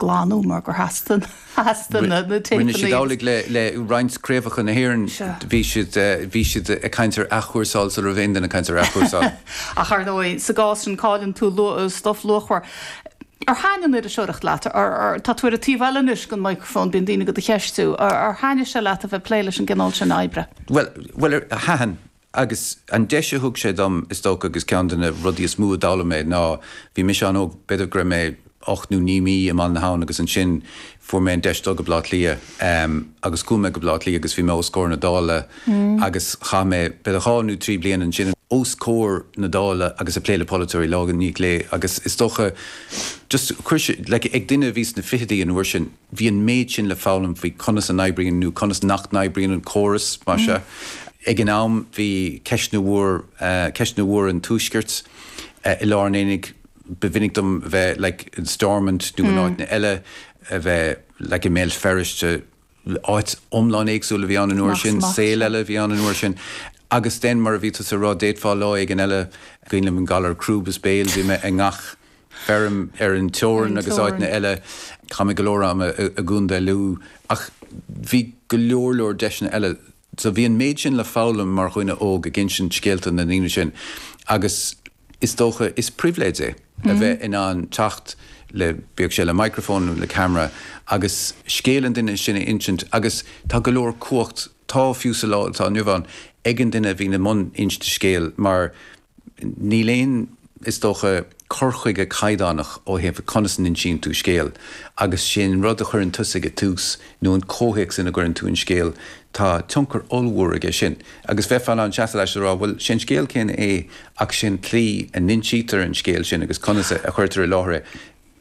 glanadh mar gur theastaigh na téipeanna. Rinne siad amhlaidh le roinnt craobhacha na hÉireann, bhí siad ag caint ar athchúrsáil sula raibh aon duine ag caint ar athchúrsáil. Ach ar ndóigh, sa gcás sin, cailleann tú stuif luachmhar. Ar thaitn an iriseoireacht leat? Tá tú ar an taobh eile anois den microphone, bíonn daoine agat do do cheistiú. Ar thaitn sé leat a bheith ag plé leis an gcineál sin oibre? Bhuel, thaitin Agus an deis a thug sé dom, is dócha, agus ceann de na rudaí is mó a d'fhoghlaim mé ná, bhí mise an-óg, b'fhéidir go raibh mé ocht nó naoi mí i mBaile na hAbhann agus ansin fuair mé an deis dul go Baile Átha Cliath agus chuaigh mé go Baile Átha Cliath agus bhí mé os comhair na Dála agus chaith mé b'fhéidir dhá nó trí bliana ansin os comhair na Dála agus ag plé le polaiteoirí lá i ndiaidh lae agus is dócha just chuir sé, like, ag duine a bhí sna fichidí an uair sin. bhí an méid sin le foghlaim faoi conas a oibríonn, nó conas nach n-oibríonn, an córas, más maith leat. Ag an am, bhí ceist an, ceist an, bhuel, an Tuaisceart, i lár an aonaigh. Ba mhinic dom bheith like in Stormont nó in áiteanna eile, bheith like i mBéal Feirste, áit iomlán éagsúil a bhí ann an uair sin, saol eile a bhí ann an uair sin. Agus then, mar a bhí tusa a rá, d'fhéadfá lá éigin eile, cuimhin liom an galar crúb is béil, bhí mé i ngach, feirm ar an teorainn agus áiteanna eile. Chaith mé go leor ama i gContae Lú ach bhí go leor leor deiseanna eile so bhí an méid sin le foghlaim mar dhuine óg ag insint scéalta na ndaoine sin agus is dócha is pribhléid é a bheith in ann teacht le, bíodh sé le microphone nó le camera agus scéal an duine sin a insint agus tá go leor cumhacht, táim ag rá fiú sa lá atá inniu ann, ag an duine a bhíonn i mbun insint scéil mar Níl aon, is dócha, cur chuige caighdeánach ó thaobh conas a n-insíonn tú scéal agus sé an rud a chuireann tusa ag tús nó an comhthéacs ina gcuireann tú an scéal, tá tionchar ollmhór aige sin. Agus bheifeá in ann seasamh leis is a rá, bhuel, sé an scéal céanna é ach sé an tslí a n-insítear an scéal sin agus conas a chuirtear i láthair é,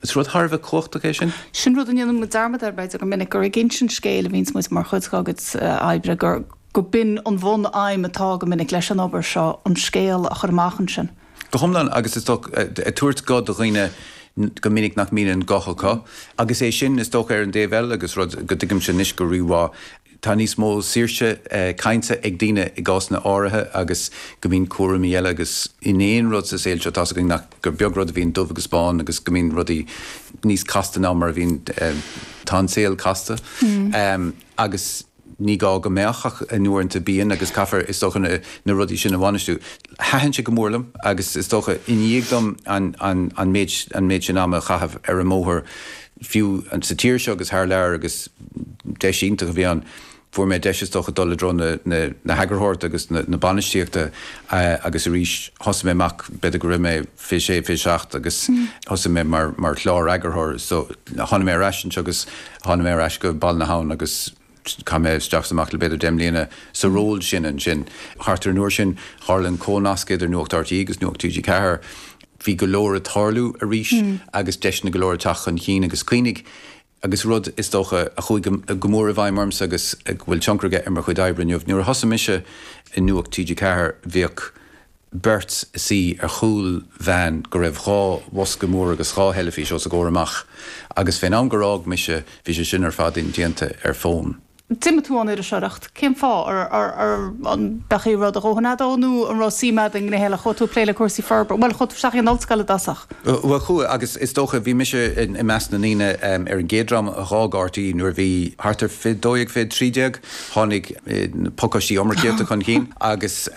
Is rud thar a bheith cumhachtach é sin. Sin rud a ndéanann muid dearmad air b'fhéidir go minic, gur ag insint scéil a bhíonns muid mar chuid dár gcuid oibre, gur, gurb in an bhunaidhm atá go minic leis an obair seo, an scéal a chur amach ansin. Go hiomlán agus is dócha, ag tabhairt guth do dhaoine go minic nach mbíonn an guth acu agus é sin is dócha ar an dtaobh eile agus rud go dtuigimse anois go rí-mhaith, tá níos mó saoirse cainte ag daoine i gcásanna áirithe agus go mbíonn cúraimí eile agus in aon rud sa saol seo atá againn nach, gur beag rud a bhíonn dubh agus bán agus go mbíonn rudaí níos casta ná mar a bhíonn, tá an saol casta agus ní gá go mbeadh ach uaireanta bíonn agus caithfear is dócha na rudaí sin a bhainistiú. Thaitin sé go mór liom agus is dócha i ndiaidh dom an méid sin ama a chaitheamh ar an mbóthar, fiú sa tír seo agus thar lear agus deis iontach a bhí ann. Fuair mé deis is dócha dul i dtreo na heagarthóireachta agus na bainistíochta agus arís thosaigh mé amach, b'fhéidir go raibh mé 26, 27 agus thosaigh mé mar chlár-eagarthóir. So tháinig mé ar ais anseo agus tháinig mé ar ais go Baile na hAbhann agus. Chaith mé isteach is amach le b'fhéidir deich mbliana sa ról sin ansin. Thart ar an uair sin, tharla an comhnasc idir Nuacht RTÉ agus Nuacht TG4. Bhí go leor ag tarlú arís agus deiseanna go leor ag teacht chun cinn agus cuimhnigh, agus rud, is dócha, a chuaigh go mór i bhfeidhm ormsa agus a bhfuil tionchar aige ar mo chuid oibre inniu, nuair a thosaigh mise i Nuacht TG4, bhíodh. beirt suí ar chúl veain go raibh dhá bhosca mór agus dhá theilifís os a gcomhair amach agus fén am gur fhág mise bhí sé sin ar fad indéanta ar fón. D'imigh tú ón iriseoireacht, cén fáth? An mbeadh aon rud a dhóthain a'd ó nó an raibh suim a'd i ngnéithe eile? Chuaigh tú ag plé le cúrsaí forbartha, bhuel chuaigh tú isteach ag an ollscoil i dtosach. Bhuel chuaigh agus is dócha bhí mise i measc na ndaoine ar an gcéad dream a dh'fhág RTÉ nuair a bhí thart ar fiche dó dhéag, fiche trí déag, tháinig na pacáistí iomarcaíochta chun chinn agus,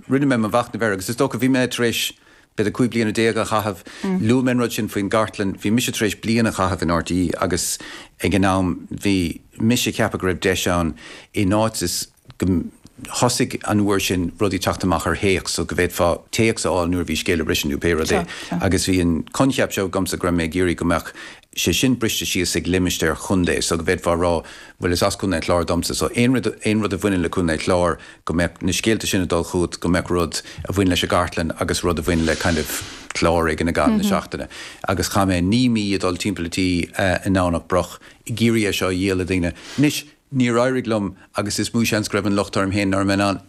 Rinne mé mo mhachnamh air agus is dócha, bhí mé tar éis b'fhéidir cúig bliana déag a chaitheamh, luaigh mé an rud sin faoin gcartlann, bhí mise tar éis bliain a chaitheamh in RTÉ agus ag an am bhí mise ag ceapadh go raibh deis ann in áit is go thosaigh an uair sin rudaí ag teacht amach ar théacs so go bhféadfá téacs a fháil nuair a bhí scéal ag briseadh nó pé rud é agus bhí an coincheap seo agamsa go raibh mé ag iarraidh go mbeadh sé sin briste síos ag limistéir chontae so go bhféadfá a rá, bhuel is as Contae an Chláir domsa so aon rud, aon rud a bhaineann le Contae an Chláir go mbeadh na scéalta sin ag dul chugat, go mbeadh rud a bhain leis an gcartlann agus rud a bhain le kind of clár éigin i gcaitheamh na seachtaine. Agus chaith mé naoi mí ag dul timpeall an tí i nDomhnach Broc ag iarraidh é seo a dhíol le daoine. Anois, níor éirigh liom agus is mó seans go raibh an locht orm féin nár mé in ann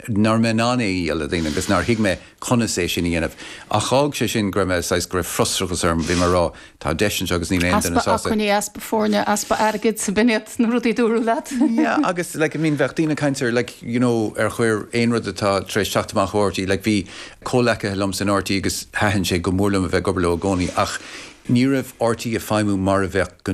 nár mé in ann é a dhíol le daoine agus nár thuig mé conas é sin a dhéanamh. Ach d'fhág sé sin go raibh mé, saghas, go raibh frustrachas orm, bhí mé ag rá, tá deis anseo agus níl aon duine sásta. Easpa acmhainní, easpa foirne, easpa airgid, b'in iad na rudaí a dúradh leat. Yeah, agus, like, I mean, bheadh daoine ag caint ar, like, you know, ar chuir aon rud atá tar éis teacht amach ó RTÉ, like, bhí comhleacaithe liomsa in RTÉ agus thaitin sé go mór liom a bheith ag obair leo i gcónaí ach ní raibh RTÉ ag feidhmiú mar a bheadh go